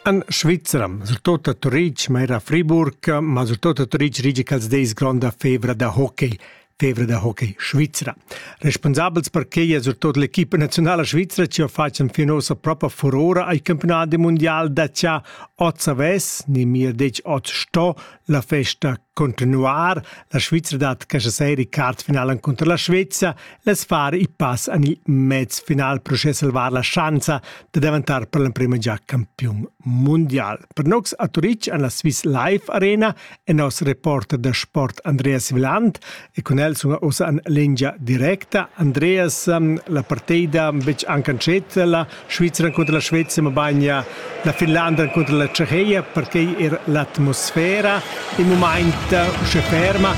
En Svizra, surtut a Turitg, ma era a Friburg, ma surtut a Turitg rige quels deis gronda fevra da hockey fevra da hockey Svizra. Responsabels per quei e surtut l'equipa nazionala svizra che facen fin ossa propria furora ai campionat mundial da cha oz aves, ni mir dec oz sto la festa Continuar la Svizra dat questa serie card final encunter la Svezia les far i pass en il mez final per uschè salvar la schanza da daventar per l'emprima già campiun mondial. Per nox a Turitg en la Swiss Life Arena è nostro reporter da sport Andrea Sivilant E cun el sun ussa an lingia directa. Andreas, la partida betg anche antschet la Svizzera contro la Svezia, ma bain ja la Finlanda contro la Tschecheia, perché er l'atmosfera in moment usce ferma.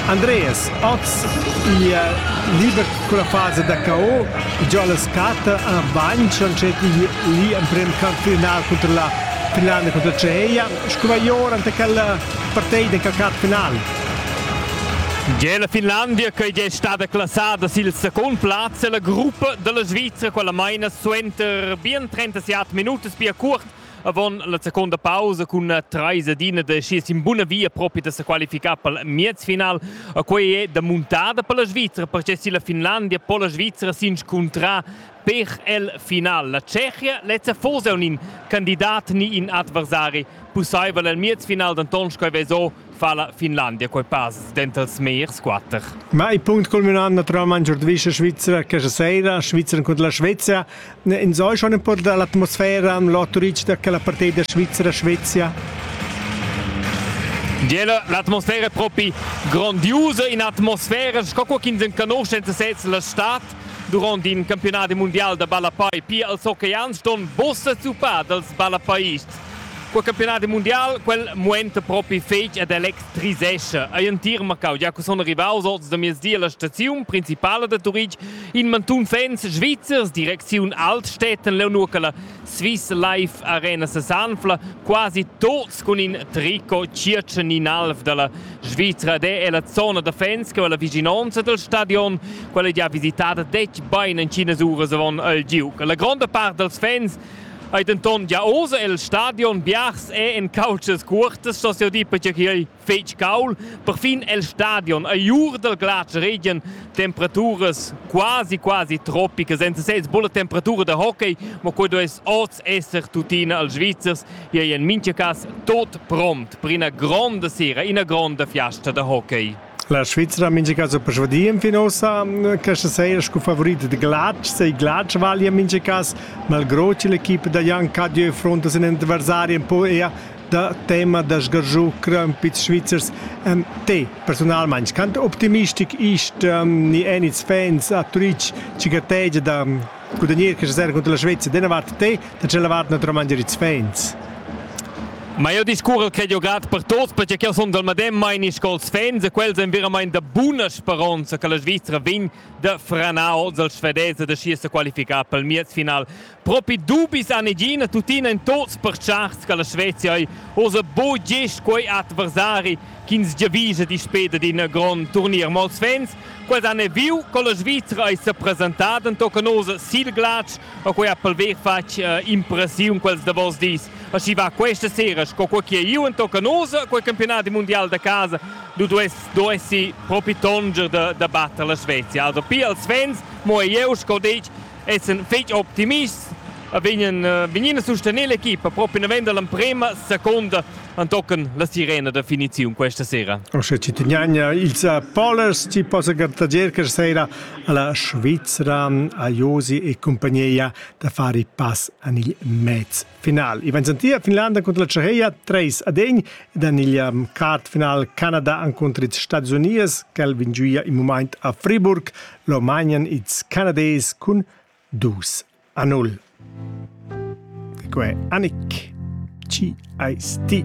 Andreas, oz ia liber con la fase da KO, già la scatta a Banch, antschet lì en prem campionat contro la Finlanda contro la Tschecheia. Scuva io ante quella partida in calcat finale? Gia la Finlandia che è stata classada sil secund plaz della gruppa della Svizzera quella maina suenter bien 37 minuti pia curt avon la seconda pausa cun treis adina de schies in buna via propri da se qualificar pel miezfinal. A quei è da muntada per la Svizzera perché si la Finlandia po la Svizzera s'inscuntrar per el final. La Tschechia lezza forsa un candidat ni in adversari pussaivel el miez final d'Anton Scoiveso fa la Finlandia quei pass dentals meirs quater. Ma i punct culminant naturalmente giù di vista Svizzera che stasera Svizzera contro la Svezia in so schon importante l'atmosfera l'autorità che la partita Svizzera-Svezia Diela, l'atmosfera è proprio grandiosa in atmosfera, sco qualcuno in canoscenza sez la stat Durant in campiunadi mundial da ballapei pia els hockeys ston bossa zuppar dals ballapeists. Quel campiunadi mundial, quel muenta propi fetg ed el extrisescha. Ei entir Macau gia che sun arrivaus oz da miezdi alla staziun principala da Turitg in mantun fans svizzers direcziun Altstätten leu nuocala Swiss Life Arena sesanfla quasi tuts cun in tricot tschiertschen in alv dalla Svizra D e la zona da fans che va la vicinanza del stadion, quella è già visitata detg bein en Chinas uras avon el giug. La gronda part dels fans ei denton già oz el stadion biars e en couches cuortas, sto jau dir perché fetg caul. Perfin el stadion ei ur dal glatsch regien temperaturas quasi quasi tropiche senza sei bulla temperatura da hockey, ma quei duess oz esser tuttina als Svizzers hier in mincha cas tot prompt per ina gronda sera, ina gronda fiasta da hockey. La Svizzera mincha caso persuadir in fin ossa questa sera sco favorit de Glatsch, sei Glatsch vali in mincha cas, malgrado che l'equipe da Jan Cadieu fronta sin adversario un po ea da tema da sgargiur crampits svizzers um, te personalmein kant optimistic ist um, ni en its fans a Turitg ci gategia da gudagnir che ser contro la Svezia dena vart te da ce la vart notre mangiar its fans Ma io discurre il credio grad per tutti perché io sono del medem meini scols fans e quels en veramente buona speranza che la Svizzera vin de frenar oz al svedese de sciesse qualificar pel miez final Propi dubis ha negina tuttina en tots pertscharts che la Svezia ei oz bo gest quei adversari ch'ins giavischa dispet d'in grond turnier. Molts fans, quels han viu che la Svizra ei sepresentada tochen oz sil glatsch, a quei ha Pelver fatg eh, impressiun quels davos dis. Aschi va questa sera sco quei che io tochen oz quel campionat mondial da casa du duess do essi propi tonger da, da batter la Svezia. Also pi als fans, mo ei eu sco detg essend fetg optimists e vegnan eh, vegnir a sustener l'equipa propi novembre l'emprema seconda antochen la sirena definiziun questa sera. Osce Citignagna, ils Polers ci possa gartager che sera alla Svizzera a Josi e compagnia da fare i pass a il mezzo. final. I vegn sentì a Finlanda cunter la Tschecheia 3 ad 1 ed en il um, quart final Canada encunter ils Stats Unids quel vegn giuia in moment a Friburg. Lo mangian ils Canadais cun 2 a 0. E qui è Annick. Ci eis ti.